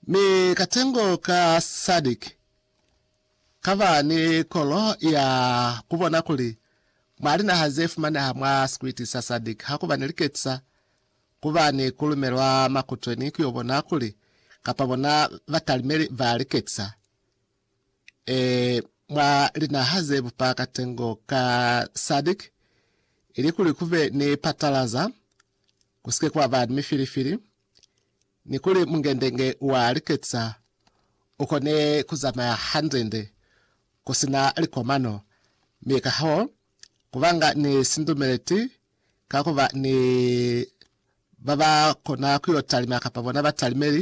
Mi katengo ka Sadik kaba ni kolo ya kubona kuli mwa linaha zefumaneha mwa sikwiti sa Sadik hakuba ni liketisa kuba ni kulumelwa makutweni kuyo bona kuli kapa bona batalimeli ba liketisa ee mwa linaha zebupa katengo ka Sadik ilikuli kube ni patalaza kusike kwa ba ni mifilifili, ni kuli mungendenge wa liketisa u kone ku zamaya hande-nde ku si na likomano, mi kahoo, ku banga ni sindumeleti ka ku ba ni ba ba kona ku yo talima kapa bona batalimeli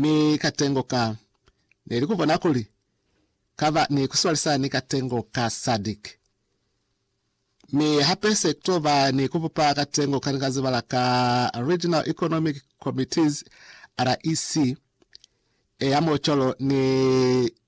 Mi katengo ka ne li kubona kuli kaba ni kuswalisa ni katengo ka Sadic. Mi hape se kuto ba ni kubupa katengo kani ka zibala ka Regional Economic Committees, REC, e ya Mocholo ni.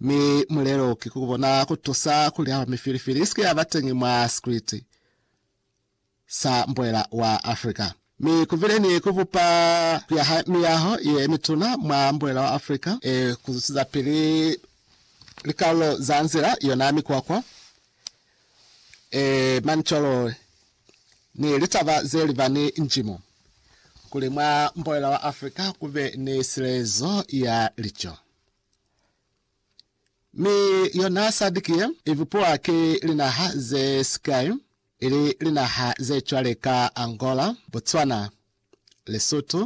Mi mulelo ki ku bona ku tusa kuli haba mifilifili isike yaba teñi mwa sikriti sa mbwela wa Africa. Mi ku bile ni ku bupa ku yaha miyaho ye mituna mwa mbwela wa Africa e ku zusizapili likalolo za nzila yona mikwakwa e manicolo ni litaba ze liba ni njimo, kuli mwa mbwela wa Africa ku be ni silezo ya lico. Mi yona SADC ye ibupuwa ki linaha ze sikai, ili linaha ze cwale ka Angola, Botswana, Lesotho,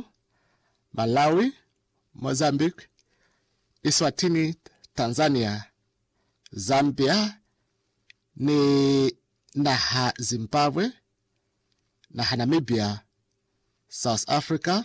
Malawi, Mozambique, Eswatini, Tanzania, Zambia ni naha Zimbabwe, naha Namibia, South Africa,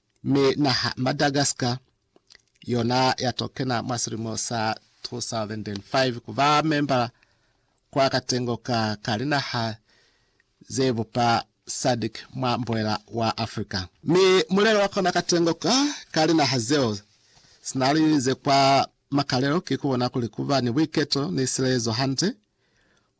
Mi naha Madagascar yona ya to kena mwa silimo sa 2005 ku ba membala kwa katengo ka ka linaha ze bupa SADC mwa mbuela wa Africa. Mi mulelo wa kona katengo ka ka linaha zeo sina li ze kwa makalelo ki ku bona kuli ku ba ni buiketo ni silezo hande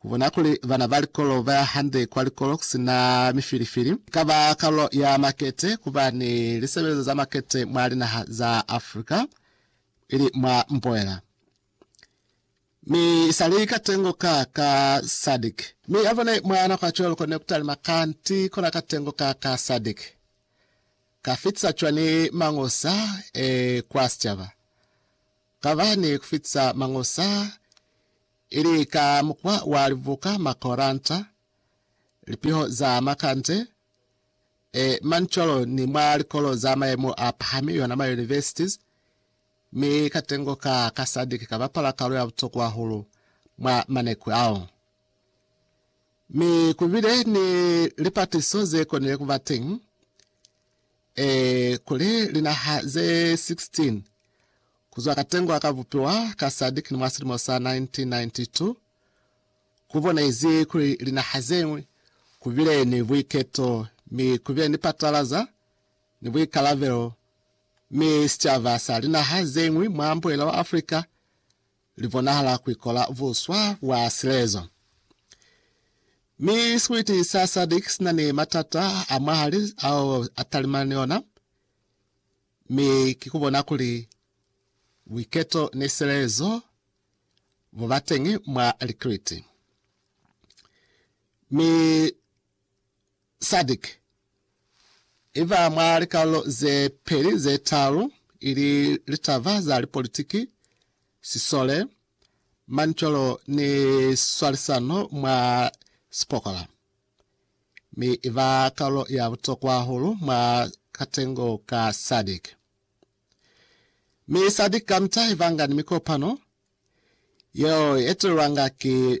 Ku bona kuli bana ba likolo ba ya hande kwa likolo ku si na mifilifili i ka ba kalulo ya makete ku ba ni lisebelezo za makete mwa linaha za Africa, ili mwa mboela, mi i sa li katengo ka ka SADC. Mi ya bone mwa nako ya cwale lu konile ku talima kanti kona katengo ka ka SADC ka fitisa cwani mangosa e kwa sicaba? Ka ba ni ku fitisa mangosa. Ili ka mukwa wa libuka, makoranta, lipiho za makande, e, mancolo, ni mwa likolo za mayemo a pahami, yona ma universities, mi katengo ka ka sadiki ka bapala kalo ya butokwa hahulu mwa maneku ao. Mi kubile ni lipatiso ze konile kuba teñi. Ee, kuli linaha ze 16 kuzwa katengo ka bupiwa ka SADC ni mwa silimo sa 1992, ku bonezi kuli linaha zeñwi ku bile ni buiketo mi ku bile ni patalaza ni buikalabelo, mi sicaba sa linaha zeñwi mwa mbuhela wa Africa li bonahala ku ikola buswa bwa silezo. Mi sikwiti sa SADC si na ni matata a mwahali ao a talimana ni ona, mi ki ku bona kuli buiketo ni silezo bu ba teñi mwa likiliti. Mi Sadc i ba mwa likalolo ze peli ze talu, ili litaba za lipolitiki, sisole, manicolo ni swalisano mwa sipokola, mi i ba kalulo ya butokwa hahulu mwa katengo ka Sadc. Mi Sadc kamita i banga ni mikopano yeo i etelelwanga ki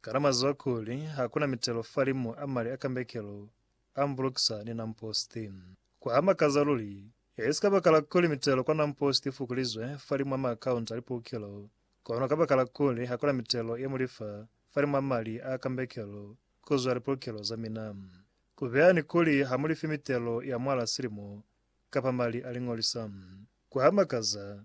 Kana mwazwa kuli hakuna mitelo falimu a mali a kambekelo a mbulukisa ni Nampost? Kwa makaza luli! Haizi kabakala kuli mitelo kwa Nampost ifukulizwe falimu a maakaunti a lipukelo, kono kabakala kuli hakuna mitelo ye mulifa falimu a mali a kambekelo kuzwa lipukelo za mina. Kubeha ni kuli hamulifi mitelo ya mwala silimo kapa mali a liñolisa. Kwa makaza!